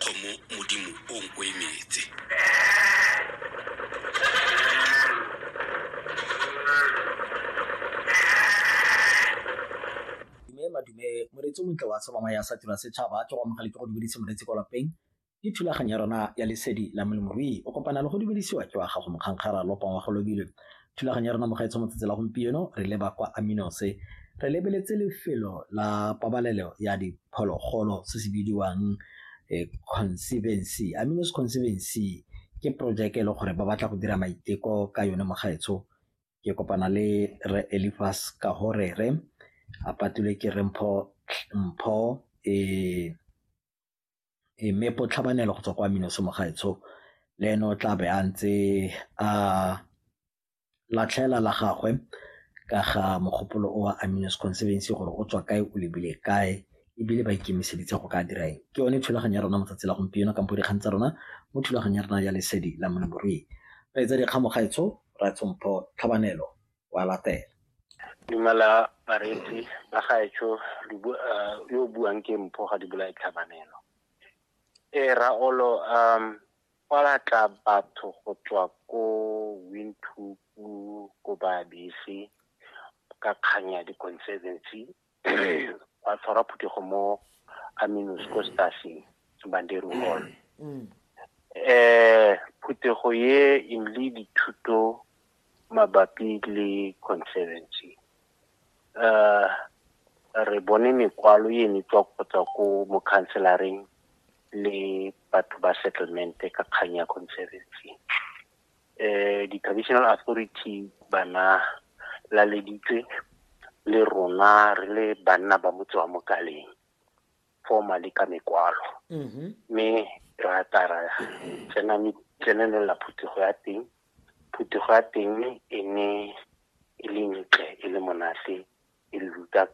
kgomo modimo o o emetse madume moretsi o montle wa tshamama ya sa tira setšhaba ke go amogele ke go dumedise moretsi kwa lapeng ke thulaganyo ya rona ya lesedi la molemoruyi o kopana le go dumedisiwa ke wa gago mokgankgara lopa wa go lobile Thulaganyo ya rona mo gaetsong matsatsi la gompieno re leba kwa Aminose re lebeletse lefelo la pabalelo ya diphologolo se se bidiwang eh, conservancy Aminos conservancy ke projeke e le gore ba batla go dira maiteko ka yone mo gaetsho ke kopana le re Elifas ka gore re a patulwe ke re mpho mpho eh Mme Botlhabanelo go tswa kwa Minosi Mogaetsho le ene o tlabe a ntse a latlhela la gagwe ka ga mogopolo o a Minosi Conservancy gore o tswa kae o lebile kae ebile ba ikemiseditse go ka dira eng. Ke yone thulaganyo ya rona mo tsatsi la gompieno ka bo dikgang tsa rona mo thulaganyo ya rona ya lesedi la molemirui Kgaitsadi Kgamogaetsho Rra Tshompho Tlhabanelo. wa latela dumela bareetsi ba gaetsho ah, yo o buang ke mpho ga di bolae tlhabanelo e raolo um fa la tla batho go tswa ko windhoek ko baabese ka kgang ya di-conservancy ba tshwara phuthego mo aminos ko staffing banderu hall um phuthego ye e le dithuto mabapi le conservancy um re bone mekwalo e ne tswa go tswa ko mokhanselareng le batho ba settlement ka kgang ya conservancy eh, di-traditional authority bana laleditswe le rona re le banna ba motse wa mokaleng formally ka mekwalo mm-hmm. mme mm -hmm. ra tara tsenanela phuthego ya teng phuthego ya teng e ne e le ntle e le monate e le ruta